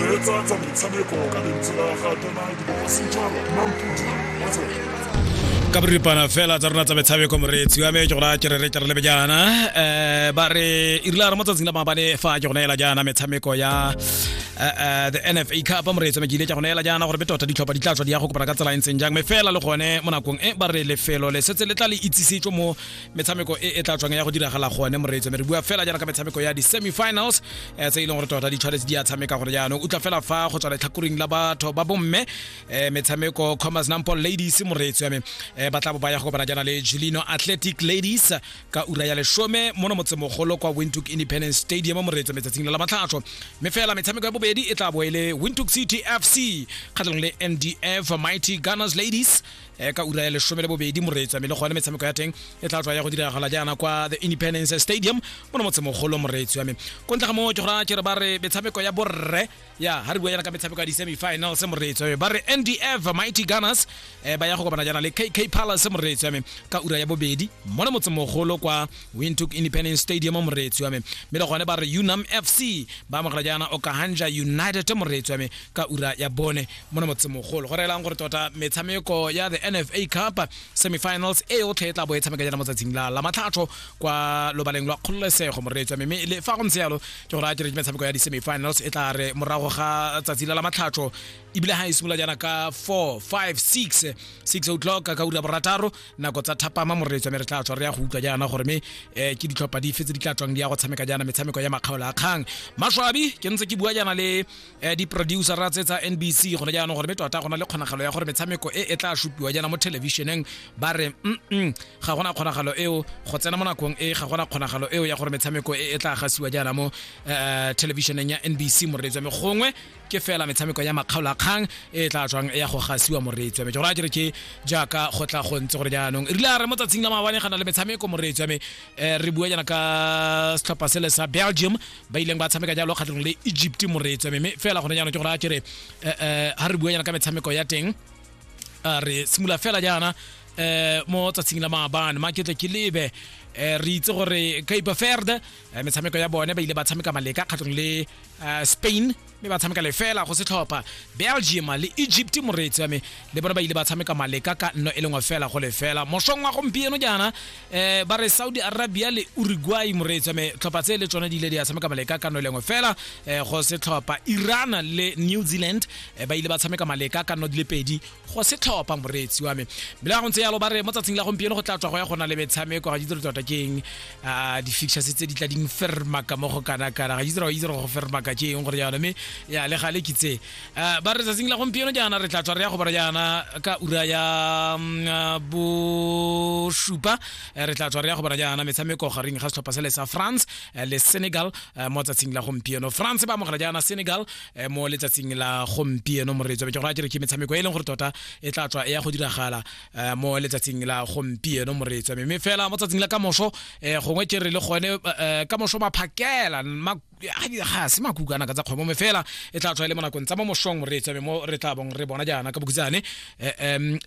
reetsa tsa metshameko ka lentswe la ga donald bogasetšhaba mampudi wa tsela ka boripana fela tsa rona tsa metshameko moreetsi wa me ke gona ke re re tle re lebe jaana um ba re irile a re mo tsatsing la maabane fa ke gona ela jaana metshameko ya eh, eh, the nfa cup moreetsi me ke ile ke gona ela jaana gore be tota ditlhopha di tla tswa di ya go kopana ka tsela e ntseng jang me fela le gone mo nakong e ba re lefelo le setse le tla le itsisetswe mo metshameko e e tla tswang ya go diragala gone moreetso me re bua fela jaana ka metshameko ya di-semifinals um tse e leng gore tota ditshwanetse di a tshameka gore jaanong o tla fela fa go tswa letlhakoring la batho ba bomme um metshameko commerce nampol ladies moreetso ya me um ba tla bo ba ya go kopana jaana le julino athletic ladies ka ura ya lesome mono motsemogolo kwa wintook independence stadium moreetso metsatsing le la matlhatlho mme fela metshameko ya bobedi e tla bo e le wintook city fc kgatlhanong le mdf mighty gunners ladies e ka ura ya lesome le bobedi moretsame le gone metshameko ya teng e tla tswa ya go diragala jaana kwa the independence stadium mo no motsemogolo moreetsi wa me ko ntle ga moo ke gora kere ba re metshameko ya borre ya ga re bua yana ka metshameko ya di-semifinals moreetsi wa me ba re ndf mighty gunners um ba ya go kopana jaana le kk palace moreetsi wa me ka ura ya bobedi mo no motsemogolo kwa wintook independence stadium moreetsi wa me mme le gone ba re unam fc ba amogela jaana okahanja united moreetsi wa me ka ura ya bone mo na motsemogolo go reelang gore tota metshameko ya the nfa cup semifinals e yotlhe e tla bo e tshameka jana motsatsing la la matlhatlho kwa lobaleng lwa kgololesego moreetswa mme le fa go ntse yalo ke gore a kere metshameko ya di-semifinals e tla re morago ga tsatsi la la matlhatlho ebile ga e simolola jana ka 4 5 6 6 o'clock ka ura borataro nako tsa thapama moreetswa mme re tla tswa re ya go utlwa jana gore mme eh, ke ditlhopha dife tse di tla tswang di ya go tshameka jana metshameko ya makgaola a kgang maswabi ke ntse ke bua jana le eh, diproducera tse tsa nbc gone jaanong gore mme tota go na le kgonagalo ya gore metshameko e e tla supiwa jaana mo thelebišeneng ba re mm ga gona kgonagalo eo go tsena mo nakong e ga gona kgonagalo eo ya gore metshameko e e tla gasiwa jaana mo eh, thelebišeneng ya nbc moreetsi wa me gongwe ke fela metshameko ya makgaolo a kgang e e tla tswang ya go gasiwa moreetsi wa me jora kere ke jaaka go tla go ntse gore jaanong re a re mo tsatsing la maabane ga na le metshameko moreetsi wa me eh, re bua jaana ka setlhopha sele sa belgium ba ileng ba tshameka jalo kgatlhanong le egypt moreetswe mme fela gone jaanong ke gore a kere eh, eh, ga re bua yana ka metshameko ya teng a re simolola fela jaana um mo tsatsing la maabane maketle ke lebe um re itse gore cape verde eh, metshameko ya bone ba ile ba tshameka maleka kgatlhanong le eh, spain mme ba tshameka lefela go setlhopha belgium le egypt moreetsi wa me le bone ba ile ba tshameka maleka ka nno e lengwe fela go lefela mosong wa gompieno jaana um ba re saudi arabia le uruguay moreetsi wa me tlhopha tse le tsone di ile di a tshameka maleka ka nno e lengwe fela um go setlhopha iran le new zealand um ba ile ba tshameka maleka ka nno di le pedi go setlhopha moreetsi wa me bile ga go ntse yalo ba re mo tsatsing la gompieno go tla tswa go ya gona le metshameko ga itse re tota ke eng ah, di-fictures tse di tla ding fermaka mo go kana-kana ga itse re itse re go fermaka ke eng gore jaana mme ya le gale ke tse Ah, ba re tsatsing la gompieno jaana re tla tswa re ya go bara jaana ka ura ya mm, ah, bosupa Eh, re tla tswa re ya go bara jaana metshameko gareng ga setlhopha se le sa france eh, le senegal eh, mo tsatsing la gompieno france ba amogela jaana senegal Eh, mo letsatsing la gompieno moreetso ke gore a kere ke metshameko e leng gore tota e tla tswa e ya go diragala eh, mo letsatsing la gompieno moreetso mme fela mo tsatsing la kamoso eh, gongwe ke re le gone kamoso maphakela ga se makukana ka tsa kgwebo mme fela e tla tswa e le mo nakong tsa mo mosong moreetso mme mo re tla bong re bona jaana ka bokutsane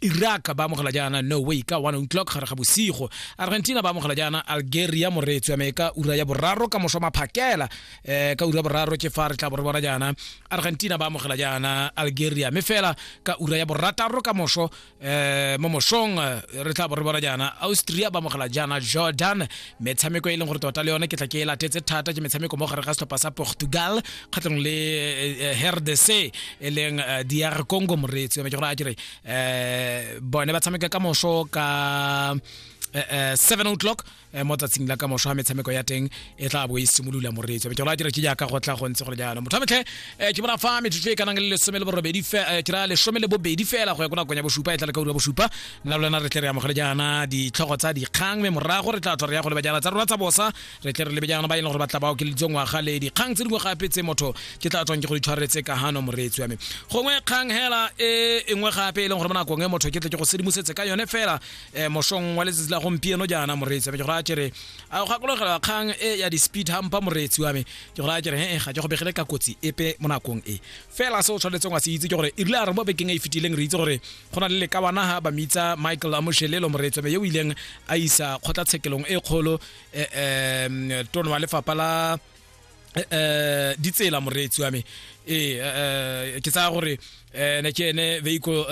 iraq ba amogela jaana no way ka one o'clock gare ga bosigo argentina ba amogela jaana algeria moreetso mme ka ura ya boraro kamoso maphakela eh ka ura boraro ke fa re tla bore bona jaana argentina ba amogela jaana algeria mme fela ka ura ya borataro ka moso eh mo mosong eh, re tla bore bona jaana austria ba amogela jaana jordan metshameko e leng gore tota le yone ke tla ke e latetse thata ke metshameko mo gare ga setlhopha sa portugal kgatlhanong le eh, eh, rdc e leng eh, dr congo moreetsi yone ke gore a kere eh bone ba tshameka ka moso ka eh, eh, 7 o'clock Eh, mo tsatsing la ka mošwa wa metshameko ya teng e tla bo e simolola moreetso metsolo a dira ke jaaka go tla go ntse gore jalo motho metlhe eh, ke bona fa metsotso e kanang le lesome le borobedi eh, ke ra lesome le bobedi fela go ya ko nakong ya bosupa e tla le ka ura bosupa nna lona re tle re amogele jaana ditlhogo tsa dikgang mme morago re tla tswa re ya go leba jaana tsa rona tsa bosa re tle re lebe jaana ba e leng gore ba tla ba okeleditswe ngwaga le dikgang tse dingwe gape tse motho ke tla tswang ke go ditshwaretse ka gano moreetsi wa me gongwe kgang hela e nngwe gape e leng gore mo nakong e motho ke tle ke go sedimosetse ka yone fela um mosong wa letsatsi la gompieno jaana moreetsi ame ke go raya kere a go gakologelwa kgang e ya di-speed hampa moreetsi wa me ke go raya kere he ga ke go begele ka kotsi epe mo nakong e fela se o tshwanetseng wa se itse ke gore e rile a re mo bekeng e e fetileng re itse gore go na le lekabanaga ba mitsa michael amoshelelo moreetsi wa me yo o ileng a isa kgotlatshekelong e kgolo um tono wa lefapha la um ditsela moreetsi wa me ee ke tsaya gore um ne ke ene vehicle